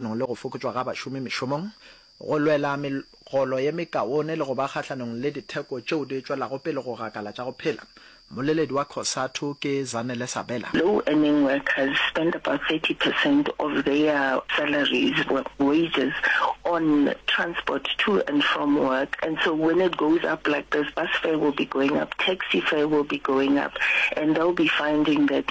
le go fokotšwa ga bašomi mešomong, go lwela megolo ye mekaone le go ba kgahlanong le ditheko tšeo di tšwelago pele go gakala tša go phela. Mmoleledi wa Cosatu ke Zanele Sabela. Low-earning workers spend about thirty percent of their salaries, wages, on transport to and from work and so when it goes up like this, bus fare will be going up, taxi fare will be going up and they'll be finding that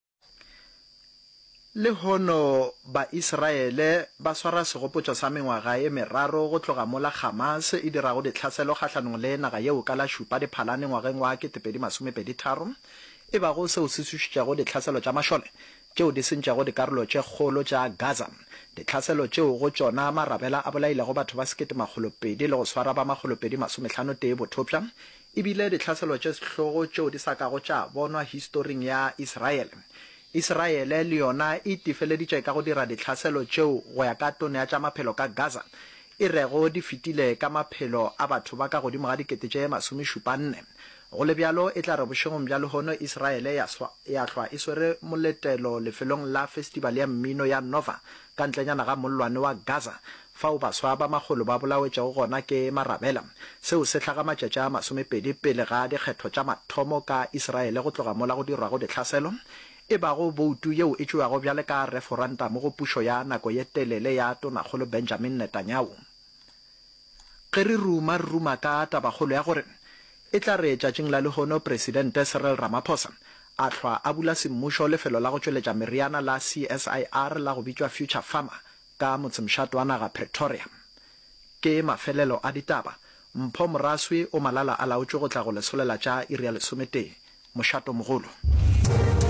Lehono Baisraele ba swara segopotšo sa mengwaga e meraro go tloga mola Hamas e dirago ditlhaselo kgahlanong le naga yeo ka la Šupa Diphalane ngwageng wa 2023, e bago seo se tsošitšego ditlhaselo tša mašole tšeo di sentšego dikarolo tše kgolo tša Gaza, ditlhaselo tšeo go tšona marabela a bolailego batho ba sekete makgolo pedi le go swara ba makgolo pedi masomehlano tee bothopša, E bile ditlhaselo tše sehlogo tšeo di sa kago tša bonwa historing ya Israele. Israele le yona e itefeleditše ka go dira ditlhaselo tšeo go ya ka Tono ya tša Maphelo ka Gaza e rego di fetile ka maphelo a batho ba ka godimo ga dikete tše masomešupanne. Go le bjalo, e tla re bošegong bja lehono Israele ya hlwa e swere moletelo lefelong la Festival ya Mmino ya Nova Ka ntlenyana ga mollwane wa Gaza, fao baswa ba makgolo ba bolaotšego gona ke marabela, seo se hlaga matšatši a masomepedi pele ga dikgetho tša mathomo ka Isiraele go tloga mola go dirwago dihlaselo, e bago boutu yeo e tšewago bjale ka reforantamo go pušo ya nako ye telele ya Tonakgolo Benjamin Netanyahu. Ge re ruma, re ruma ka tabakgolo ya gore e tla re tšatšing la lehono Presidente Cyril Ramaphosa a hlwa a bula semmušo lefelo la go tšweletša meriana la CSIR la go bitšwa Future Pharma ka motsemšat wa naga Pretoria. Ke mafelelo a ditaba. Mpho Moraswi o malala-a-laotšwe go tla go lesolela tša iri ya lesometee. Mošato mogolo.